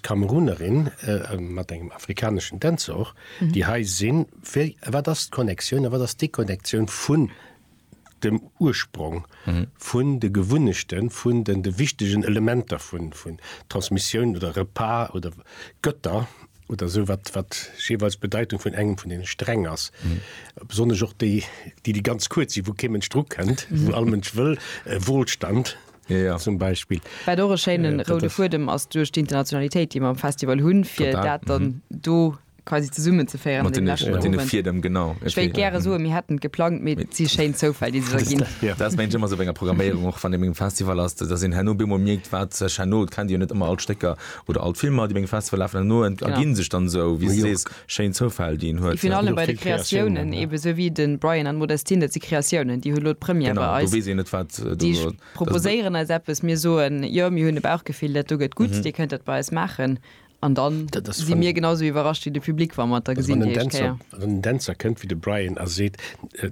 Kamerunerin mat engem afrikaneschen Dänzor, déi hei sinn. Wéi, wat ass d'Connectioun a wat ass d'Deconnectioun vun dem Ursprong, vun de Gewunnechte vun den de wichtegen Elementer vun vun Transmissioun oder Repas oder Götter oder esou, wat wat jeeweils d'Bedeitung vun engem vun deene Sträng ass? Besonnesch och déi, déi déi ganz kuerz sinn, wou kee Mënsch drukënnt, wou all Mënsch wëll, Wohlstand. ja. zum Beispill. Wat och e schéine äh, roude Fuedem ass duerch d'Internationalitéit, déi mer am Festival hunn, fir Total. dat dann mhm. do quasi zesummen ze féieren. Dem genau okay. gerne so mir hätten geplant mit sie Sche zofall die gehen ja. das mein immer so enger Programmierung auch von dem Festival hast das in Hanno Bimo mirgt wat Chanot kann dir net immer alt Stecker oder alt Filmer die Festival laufen nur gin sich dann so wie sie Schéin Zoufäll déi en huet. Vun allem bei de Kreatiounen eben, esou wéi de Brian an d'Modestine, dat si Kreatiounen, déi hu lo d'Première bei eis. Genau, do weess een net wat do. Déi proposéieren eis eppes, mir soen, jo mir hunn e Bauchgefill, dat do gëtt gutt, Dir kënnt dat bei eis maachen. An dann si mir genau esou iwwerrascht wéi de Public, wa mer et da gesinn déi éischt Kéier. Wann en Dänzer kënnt wéi de Brian a seet,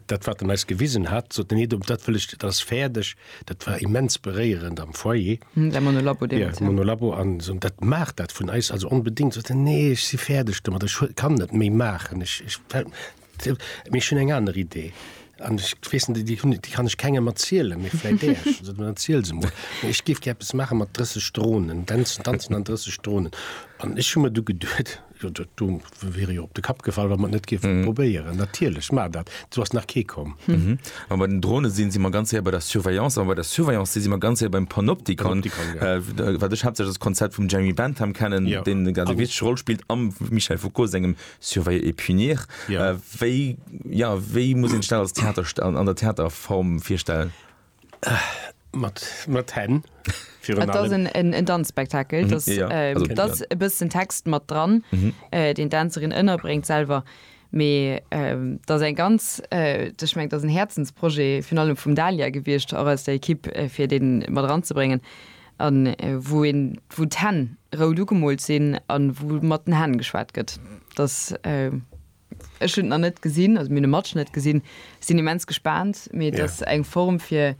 dat wat en eis gewisen hat, sot en, nee dat wëll ech, dat ass fäerdeg, Dat war immens beréierend am Foyer. Hm, däi Monolabo deemools, ja. Ja, Monolabo an esou, dat maach dat vun eis also onbedéngt. Esou de, nee, ech si fäerdeg domat, ech huel, kann net méi maachen, ech, ech fält mir, mee ech hunn eng aner Idee an ech weess net, déi hunn, déi kann ech kengem erzielen, mee vläit där. Ech esou, dann erziel se mol. Mee ech géif gär eppes maache mat 30 Dronen, Dänzen, Danzen an 30 Dronen. An ech hu mer du geduet, Jo, dat do wier jo op de Kapp gefall, wa mer et net géifen mhm. probéieren. Natierlech mar dat. Du ass nach kee komm. Mhm. An bei den Drone sinn si mer ganz her bei der Surveillance, an bei der Surveillance si mer ganz her beim Panoptikon. Panoptikon ja. äh, wat ech hauptsächlich das Konzept vum Jeremy Bentham kennen, ja. den eng ganz wichtige Rolle spielt am Michel Foucault sengem Surveiller et punir. Ja. Äh, wéi ja, wéi muss en Stell als Theater an, an der Theaterform firstellen? Mat Hänn. Et ass en Danzspektakel. Et ass e bëssen Text mat dran, deen d'Dänzerin ënnerbréngt selwer. Mee et ass eng ganz, ech mengen, et ass en Häerzensprojet virun allem vum Dalia gewiescht, och aus der Ekipp, fir dee mat eranzebréngen. A wou een, wou d'Hänn rout ugemoolt sinn a wou mat den Hänn geschwat gëtt. Ech hunn et nach net gesinn, also mir hunn e Matschnëtt gesinn, sinn immens gespaant, mee et ass eng Form fir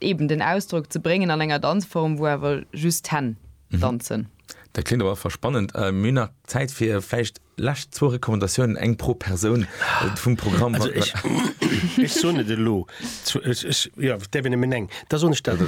eben den Ausdrock ze bréngen an enger Danzform, wou awer just d'Hänn danzen. Dat kléngt op alle Fall spannend. Mir hunn nach Zäit fir vläicht lescht zwou Recommandatiounen, eng pro Persoun vum Programm. Also ech soen et elo, jo, et däerf een nëmmen eng, da soen ech dat,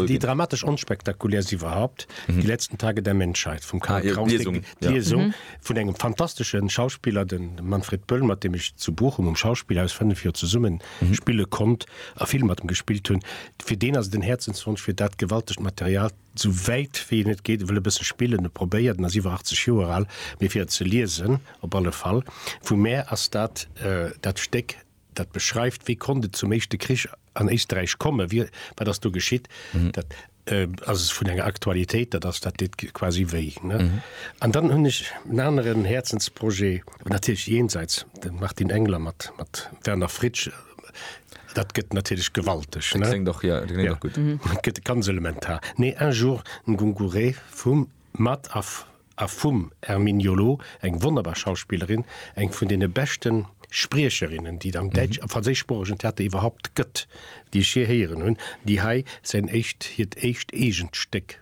déi dramatesch onspektakulärst iwwerhaupt. Die letzten Tage der Menschheit vum Karl ah, Kraus, Liesung, ja. Liesung mhm. vun engem fantasteschen Schauspieler den Manfred Böll, mat dem ich zu Bochum um Schauspielhaus 5 Joer zesummen mhm. spille konnt a Film mat dem gespielt hunn. Fir den ass den Herzenswunsch fir dat gewaltegt Material zu wäit wie net geht wëlle bësse spillen e probéiert den as iwwer 80 Joer all, mir fir ze liesen op alle Fall. Vu Mä ass dat äh, dat Steck Dat beschreift, wéi konnt et zum Éischte Krich an Éisterräich kommen, wie, wat ass do geschitt. Dat ass vun enger Aktualitéit, dat ass, dat deet quasi wéi, ne? An dann hunn ech en aneren Häerzensprojet, natierlech jenseits dem Martin Engler, mat, mat Werner Fritsch, dat gëtt natierlech gewalteg, ne? Kléngt och, jo, dat kléngt och gutt. Dat gëtt ganz elementar. Nee, Un jour, Ngungure vum, mat a A vum Hermine Jolo, eng wonnerbar Schauspillerin, eng vun deene beschte Spriecherinnen, déi et am däitsch a franséischsproochegen Theater iwwerhaupt gëtt, déi ech jee héieren hunn, déi hei säin éischt, hiert éischt eegent Stéck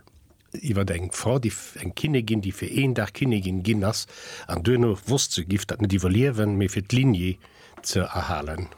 iwwer eng Frau, déi, eng Kinnigin, déi fir een Dag Kinnigin ginn ass an duerno wosst, se giff dat net iwwerliewen, mee fir d'Lignée ze erhalen.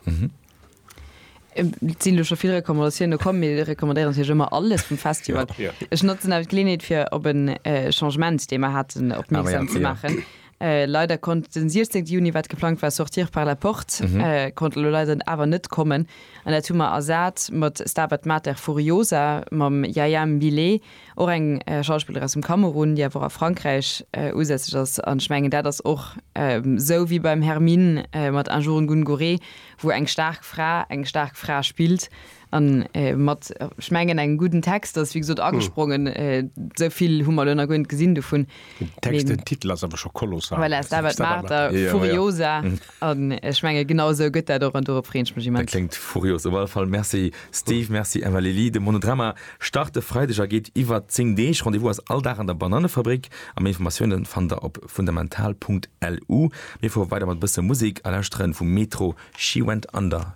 Et sinn elo scho vill Recommandatioune komm. Mir recommandéieren natierlech ëmmer alles vum Festival. Ech notzen awer d'Geleeënheet fir op e Changement, dee mer haten, opmierksam ze maachen. Leider konnt den 16 Juni, wat geplangt war, Sortir par la porte, konnt elo leider awer net kommen. An dat hu mer ersat mat Stabat Mater Furiosa mam Yaya Mbile, och eng Schauspillerin aus dem Kamerun, déi awer och a Frankräich usätzlech ass. An ech mengen, dat ass och esou wéi beim Hermine mat Un jour une Gounourée, wou eng staark Fra eng staark Fra spillt an mat, ech mengen, engem gudden Text ass wéi gesot agesprongen. Esou vill hu mer elo nach guer net gesinn dovun. Den Text, den Titel ass awer scho kolossal. Voilà, Stabat Mater furiosa an ech menge genau esou gëtt dat och an dorop freeën ech mech immens. Dat kléngt furios. Op alle Fall Merci Steve, Merci Emma Lili. De Monodrama start e Freideg a geet iwwer 10 Deeg. Rendez-vous ass all Dag an der Bananefabrik. A méi Informatiounen fannt der op fundamental.lu. Mir fuere weider mat e bësse Musek a lauschteren vu Metro She Went Under.